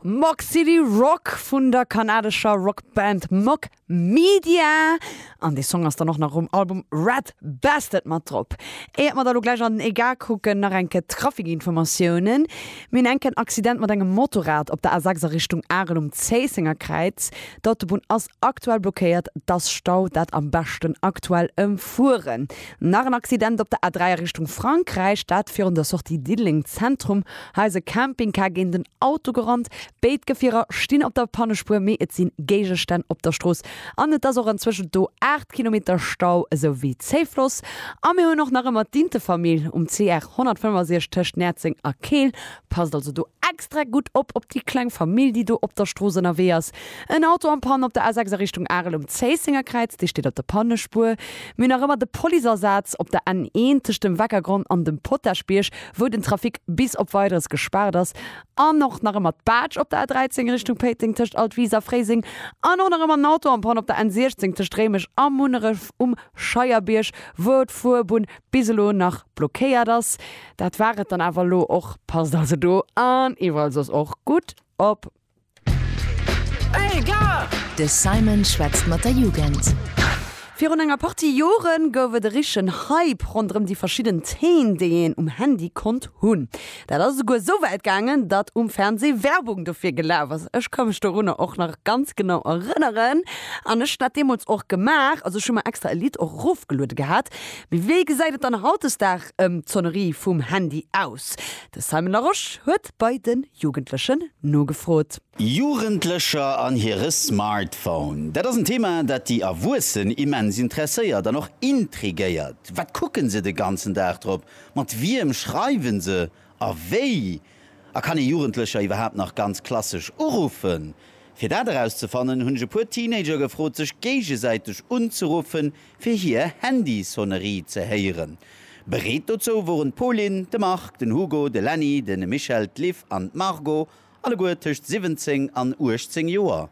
Mock City Rock vun der kanadescher Rockband Mock Media. An dee Song ass dann och nach um Album Red Bastard mat drop. Éiert mer da lo gläich an den EGA kucken, nach eng Kéier d'Trafikinformatiounen. Mir hunn eng Kéier en Accident mat engem Motorrad op der A6 a Richtung Arel um Zéissenger Kräiz. D'Autobunn ass Aktuell blockéiert dass Stau dat am beschten aktuell em fueren. Nach en Accident op der A3 a Richtung Frankräich, dat virun der Sortie Diddeleng Zentrum. Hei ass e Campingcar géint en Auto gerannt. Béid Gefierer stinn op der Pannespuer, mee et sinn Géigestänn op der Strooss an et ass och enzwëschent do 8 Kilometer Stau esou wéi Zéifloss. A mir hunn och nach ëmmer d'Intefamill um CR 165 tëscht Näerzeng a Keel. Passt also do extra gutt op, op déi kleng Famill, déi do op der Strooss ënnerwee ass. En Auto am Panne op der A6 a Richtung Arel um Zéisséngerkräiz, dee steet op der Pannespuer. Mir hunn nach ëmmer de Policeasaz op der N1 tëscht dem Weckergronn an dem Potaschbierg, wou den Trafic bis op Weideres gespaart ass. An och nach ëmmer d'Baatsch op der A13 Richtung Péiteng tëscht Altwis a Fréiseng. An och nach ëmmer en Auto am Panne op der N16 tëscht Réimech a Munneref um Scheierbierg, wou d'Fuerbunn bis elo nach blockéiert ass. Dat war et dann awer elo och. Passt also do an iwwerall soss och gutt op. De Simon schwätzt mat der Jugend. Virun enger Partie Jore gouf et e richtegen Hype ronderëm déi verschidden Theen, déi een um Handy konnt hunn. Dat ass esouguer esou wäit gaangen, datt um Fernsee Werbung dofir gelaf ass. Ech ka mech dorunner och nach ganz genau erënneren an ech hunn dat deemools och gemaach. Also ech hu mer extra e Lidd och erofgeluede gehat. Mee wéi gesäit et dann hautdesdaags ëm d'Sonnerie vum Handy aus? De Simon Larosche huet bei de Jugendlechen nogefrot. Jugendlecher an hire Smartphone, dat ass en Thema, dat déi Erwuessen immens interesséiert an och intrigéiert. Wat kucke se de ganzen Dag drop, mat wiem schreiwe se a wéi A kann ee Jugendlecher iwwerhaapt nach ganz klassesch uruffen? Fir dat erauszefannen, hunn ech e puer Teenager gefrot, sech géigesäiteg unzeruffen, fir hier Handysonnerie ze héieren. Bereet dozou woren d'Pauline, de Marc, den Hugo, de Lenny, de Michel, d'Liv an d'Margot, alleguer tëscht 17 an 18 Joer.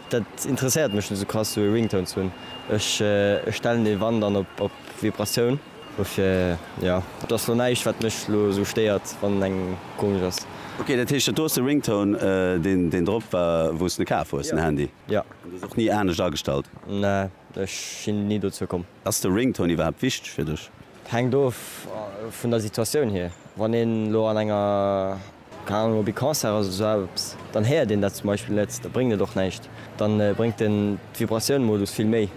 Dat interesséiert mech net sou krass sou ee Ringtone ze hunn. Ech stellen dee wann dann op Vibratioun. Dofir jo, et ass lo näischt wat mech lo sou stéiert wann en engem komesch ass. Ok, dat heescht dat do ass de Ringtone deen drop war wou s de kaf hues den Handy? Jo. An du hues och ni anescht agestallt? Nee, ech sinn ni dozou komm. Ass de Ringtone iwwerhaapt wichteg fir dech? Hänkt of vun der Situatioun hier. Wann een lo an enger. Keng Ahnung, op ee Concert ass oder sou eppes, dann héiert een dat zum Beispill net, da bréngt et och näischt. Da bréngt den d'Vibratioun-Modus vill méi.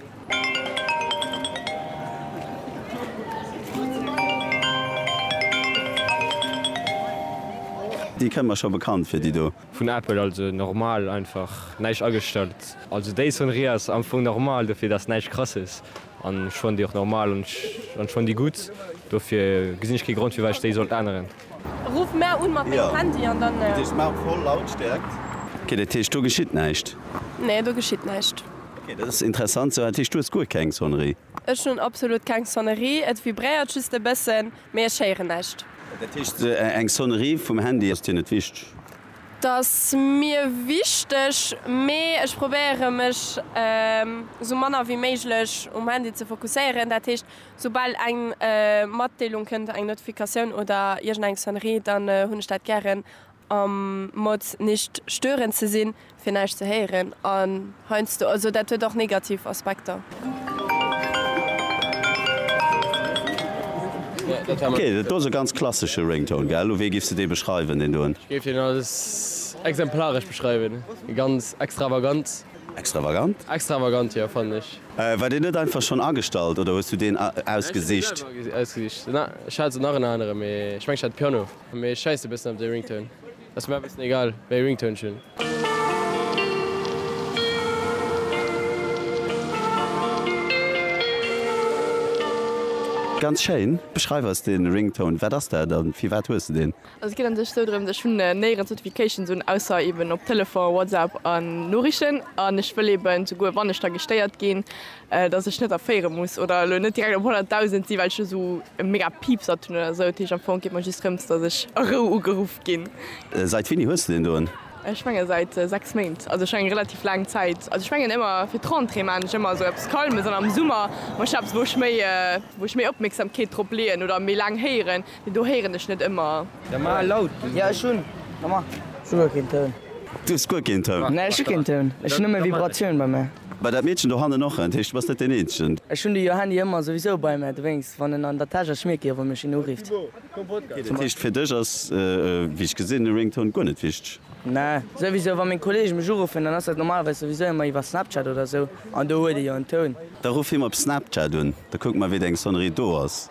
Déi kënnt mer scho bekannt vir, déi do. Vun Apple, also normal, einfach näischt agestallt. Also déi Sonnerie ass am Fong normal, dofir dass näischt krasses an ech fannen déi och normal an ech fannen déi gutt, dofir gesinn ech kee Grond firwat ech déi sollt änneren. Ruff mär un mat mengem Handy an dann. Mat der Smartphone Lautstärkt. Ok, dat heescht do geschitt näischt? Nee, do geschitt näischt. Ok, dat ass interessant. Sou, dat heescht du hues guer keng Sonnerie? Ech hunn absolut keng Sonnerie. Et vibréiert just e bëssen, mee ech héieren näischt. Dat heescht, eng Sonnerie vum Handy ass dir net wichteg? T'ass mir wichteg, mee ech probéiere mech sou manner wéi méiglech um Handy ze fokusséieren. Dat heescht, Soubal eng Matdeelung kënnt, eng Notifikatioun oder iergend eng Sonnerie, dann hunn ech dat gären am Mode nicht stören ze sinn, fir näischt ze héieren an heiansdo, also dat huet och negativ Aspekter. Ok, dat do ass e ganz klassesche Ringtone, gell? Wéi giffs de dee beschreiwen, deen doen? Ech géif deen als exemplaresch beschreiwen, ganz extravagant. Extravagant? Extravagant, jo, fannen ech. War deen net einfach schonn agestallt oder hues du deen ausgesicht? Ech hunn dee selwer ausgesicht. Na, ech hat esou nach en aneren, mee ech mengen ech hat de Piano. Mee ech schäissen e bëssen op dee Ringtone. Ass mir awer e bëssen egal wéi ee Ringtone ech hunn. Ganz schéin. Beschreif eis dee Ringtone. Wat ass dat a firwat hues de deen? Also et geet an sech sou drëms, ech hunn néierens Notifications un, ausser eben op Telefon, WhatsApp an Noriichten an ech wëll eben souguer wann ech da gestéiert ginn, dass ech net erféiere muss oder elo net direkt op 100.000 sinn, well ech do sou e mega Piepsert hunn oder sou. Dat heescht am Fong geet mer just drëms, dass ech a Rou ugeruff ginn. Seit wéini hues de deen doen? Ech menge seit 6 Méint, also ech menge relativ laang Zäit. Also ech mengen ëmmer fir d'Rentrée maan ech ëmmer sou eppes Calmes an am Summer man ech eppes wou ech méi wou ech méi Opmierksamkeet drop leeën oder méi laang héieren. Do héieren ech net ëmmer. Da mar laut gin. Jo ech hun nommar souguer keen Toun. Du hues guer keen Toun? Nee ech hu keen Toun, ech hu nëmme Vibratioun bei mär. Bei dat Meedchen do hannen och, dat heescht du bass net deen eenzegen. Ech hun de jo Handy ëmmer souwisou bei mär, dowéinst wann en an der Täsch ass schmierk ech och wann mech een urifft. Dat heescht fir dech ass wéi ech gesinn e Ringtone guer net wichteg? Nee souwisou wann meng Kollege mech uruffen dann ass dat normalerweis souwisou ëmmer iwwer Snapchat oder sou an do huet e jo en Toun. Da ruff him op Snapchat un, da kucke mer wéi deng Sonnerie do ass.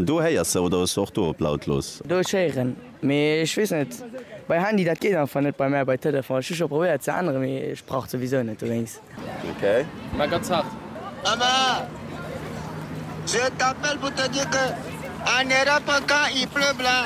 Do héiers de oder hues de och do op lautlos? Do ech héieren, mee ech wees net bei Handy dat geet einfach net bei mär bei Telefon. Ech hu scho probéiert ze änneren, mee ech brauch souwisou net dowéinst. Ok. Mä ganz haart. Emma, je t'appelle pour te dire que en Europe quand il pleut blanc.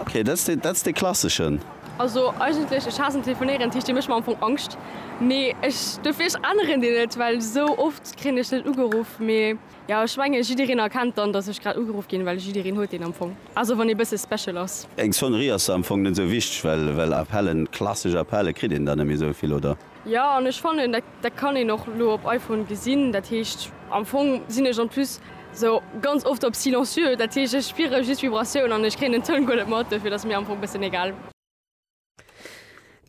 Ok dat ass dat ass dee klasseschen. Also eigentlech ech haassen telefonéieren, d'heescht dir mécht mer am Fong Angscht, mee ech dofir ech änneren deen net, well sou oft kréien ech net ugeruff, mee jo ech menge jiddereen erkennt dann dass ech grad ugeruff ginn, well jiddereen huet deen am Fong, also wann ee bësse special ass. Eng Sonnerie ass da am Fong net sou wichteg, well well Appellen, klassesch Appelle kritt een dann net méi sou vill, oder? Jo an ech fannen dat kann een och lo op iPhone gesinn, dat heescht am Fong sinn ech en plus sou ganz oft op silencieux, dat heescht ech spiere just Vibratioun an ech kréien den Toun guer net mat, dofir ass et mir am Fong bessen egal.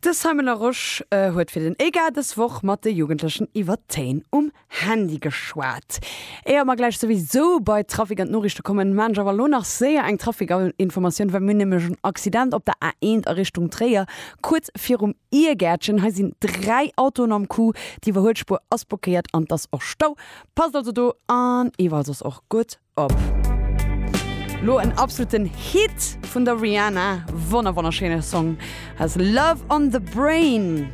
De Simon Larosche huet fir den EGA dës Woch mat de Jugendlechen iwwer d'Teen um Handy geschwat. Éier mer gläich souwisou bei d'Trafic an d'Noriichte kommen, maan ech awer elo nach séier eng Trafic-Informatioun, well mir hunn nämlech en Accident op der A1 a Richtung Tréier, kuerz virum Iergäertchen. Hei sinn 3 Autoen am Coup, d'Iwwerhuelspuer ass blockéiert an et ass och Stau. Passt also do an iwwerall soss och gutt op. Lo en absoluten Hit vun der Rihanna, wonner wonnerschéine Song, Has Love On The Brain.